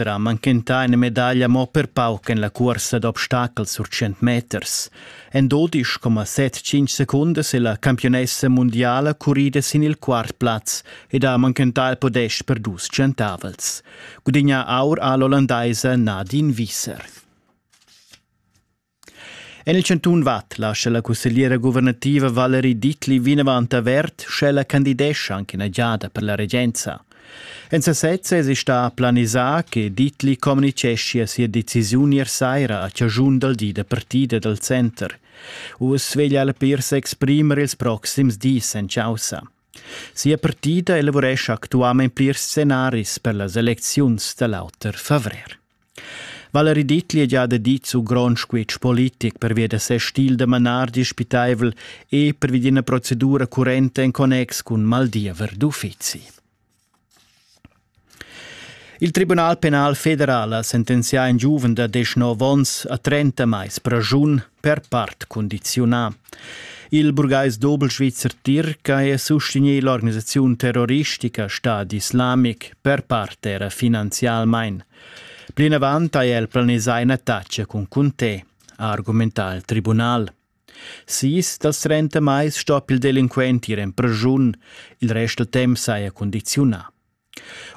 era manchentà ina medaglia mo per pauc en la cuorsa d'obstacels sur 100 meters. En 12,75 secundas è la campionessa mundiala currida sin il quart plaz ed ha manchentà il podest per dus centavels. Gudigna aur a l'ollandaisa Nadine Wieser. En il chantun Vad lascha la cussegliera guvernativa Valerie Dittli vinavant avert, sch'ella candidescha anche ina giada per la regenza. En sasez èsi stà planisà che Dittli communitgeschia sia decisiun ier saira a chaschun dal di da partida dal center. Uss veglia la per s'exprimer ils proxims dis en chaussa. Sia partida elavurescha actualment plirs scenaris per las elecziuns da l'auter favrer. Valerie Dittli ha già dit su grond squitsch politic pervia da ses stil da manar dispitaivel e pervi d'ina procedura currenta en connex cun maldiever d'uffizi. Il Tribunal penal federal ha sentenzià in giuven da 19 onns a 30 mais praschun per part condiziunà. Il burgais dobelsvizzer Tirca è sustegnì l'organisaziun terroristica Stad Islamic per part era finanzialmain. Plinavant ha el planisà in'attacca cun Conte, ha argumentà il tribunal. Sis dals trenta mais sto il delinquent ir en preschun, il rest dal temp saja condiziunà.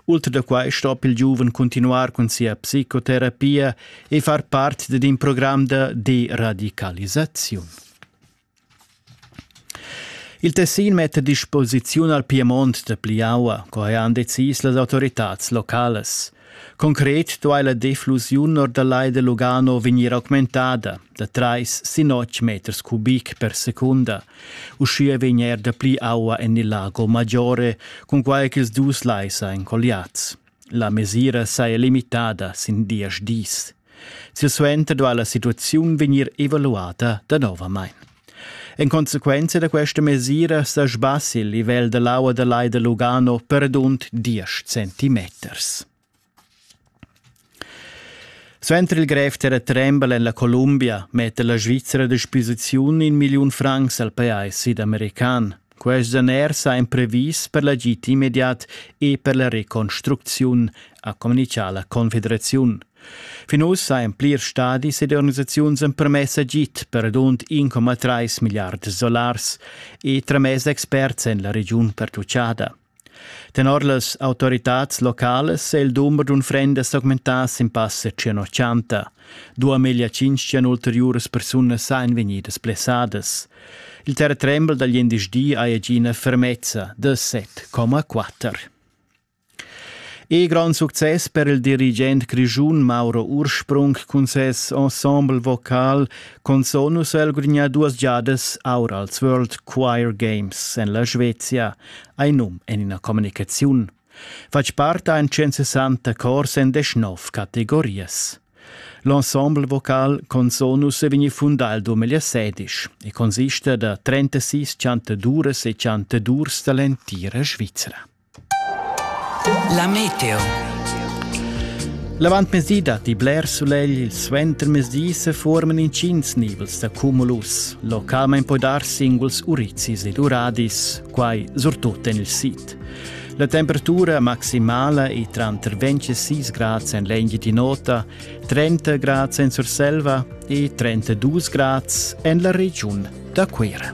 Ultra da quai stoppel il giuven cuntinuar cun sia psicoterapia e far part dad in program da deradicalisaziun. Il Tessin metta a disposiziun al Piemont da Pliaua, co han decis las autoritads localas. Concret duai la deflusiun or da Lai da Lugano vegnir augmentada. da trais sin otg meters cubic per secunda. Uschia vegn er dapli aua en il Lago Maggiore, cunquai ch'ils dus lais èn colliads. La mesira saja limitada sin diesch dis. Silsuenter duai la situaziun vegnir evaluata danovamain. En consequenza da questa mesira sa sbassi il livel da l'aua da Lai da Lugano per rund 10 centimeters. Suenter il grev terratrembel en la Columbia metta la Svizra a disposiziun in milliun francs al pajais sidamerican. Quest daner sa imprevis per l'agid immediat e per la reconstrucziun, ha communitgà la Confederaziun. Fin ussa en plirs stadis ed organisaziuns empermess agid per radund 1,3 milliard dollars e tramess experts en la regiun pertuccada. Tenor las autoritads localas è il dumber d'unfrendas s'augmentà sin passa tschenotschanta. Dua meglio tschintg ulteriuras persunas èn vegnidas blessadas. Il terretrembel da glindesdi ha egina fermezza da 7,4. E grand success per il dirigent grischun Mauro Ursprung cun ses ensemble vocal Consonus el gugna duas giadas aur als World Choir Games en la Svezia. Ei num en ina communicaziun. Fatg parta en 160 cors en deschnov categorias. L'ensemble vocal Consonus è vegni fundà il 2016 e consiste da 36 chantaduras e chantadurs dall'entira Svizra. La meteo. L'avantmezdi datti bler sulegl, il suentermezdi se forman intgins nivels da cumulus. Localmein poi dar singuls urizis ed uradis, quai surtut en il sid. La temperatura maximala è tranter 26 grads en l'Engitinota, 30 grads en Surselva e 32 grads en la regiun da Cuira.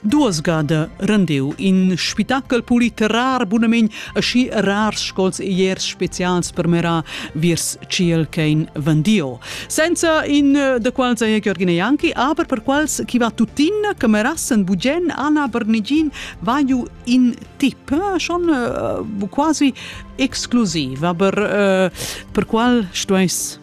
Duas gada rendeu in spitachel politerar bunamein aschi rars scols e iers specials per mera viers ciel ch'ein vendio. Senza in eh, da quals ei Georgina Janki, aber per quals chi va tuttina che merassen bugen Anna Bernigin vaiu in tip eh, schon eh, quasi exclusiv, aber per qual stueis